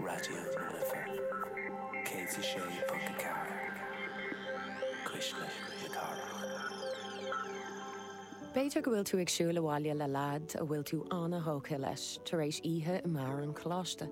Raidió na Life 106.4 Cuisle na Cathrach. B'fhéidir go bhfuil tú ag siúl abhaile le leaid a bhfuil tú an-tógtha leis tar éis oíche i mbeár an choláiste.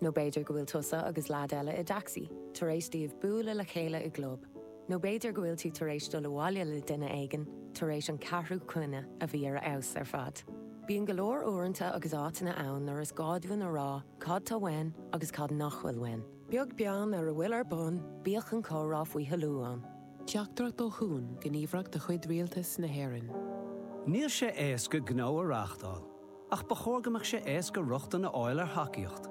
Nó b'fhéidir go bhfuil tusa agus leaid eile i dtacsaí tar éis daoibh bualadh le chéile i gclub. Nó b'fhéidir go bhfuil tú tar éis dul abhaile le duine éigin tar éis an ceathrú coinne a bhí ar a fheabhas ar fad. Bíonn go leor uaireanta agus áiteanna ann nuair is gá dúinn a rá cad tá uainn agus cad nach bhfuil uainn. Beag beann ar a bhfuil ar bun, bíodh an comhrá faoi thoiliú ann. Teachtaireacht ó Chuan, gníomhaireacht de chuid Rialtas na hÉireann. Níl sé éasca gnó a reáchtáil, ach ba chóir go mbeadh sé éasca rochtain a fháil ar thacaíocht.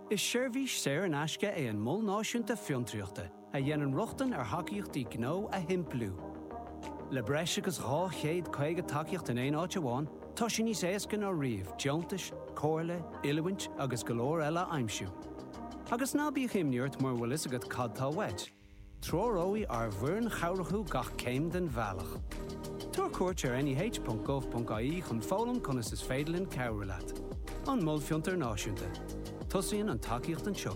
Is seirbhís saor in aisce é an Mol Náisiúnta Fiontraíochta, a dhéanann rochtain ar thacaíochtaí gnó a shimpliú. Le breis agus 250 tacaíocht in aon áit amháin, tá sé níos éasca ná riamh deontais, comhairle, oiliúint agus go leor eile a aimsiú. Agus ná bíodh imní ort mura bhfuil fhios agat cad tá uait, treoróidh ár bhfoireann chabhrach thú gach céim den bhealach. Tabhair cuairt ar neh.gov.ie chun foghlaim conas is féidir linn cabhrú leat. An Mol Fiontar Náisiúnta. Tosaíonn an tacaíocht anseo.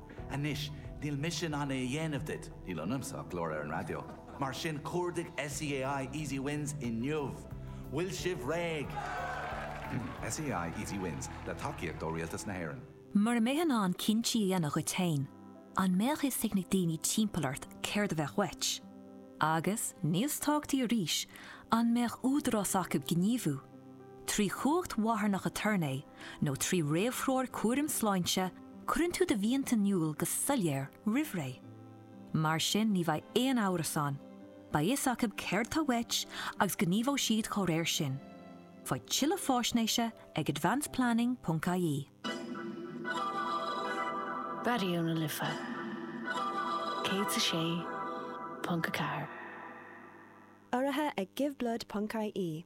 Anois, níl mise in ann é a dhéanamh duit, níl ionamsa ach glór ar an raidió, mar sin cuardaigh SEAI Easy Wins inniu! Bhfuil sibh réidh? SEAI Easy Wins, le tacaíocht ó Rialtas na hÉireann. Mura mbeifeá in ann cinntí a dhéanamh dhuit féin, an mbeadh fhios ag na daoine timpeall ort céard a bheadh uait? Agus, níos tábhachtaí arís, an mbeadh údarás acu gníomhú? Trí chumhacht mharthanach aturnae nó trí réamhthreoir cúraim sláinte, cuireann tú do mhianta in iúl go soiléir roimhré. Mar sin ní bheidh aon amhras ann, beidh fhios acu céard atá uait agus gníomhóidh siad dá réir sin. Faigh tuilleadh faisnéise ag advanceplanning.ie. Raidió na Life 106.4. Urraithe ag Give Blood ponc-IE.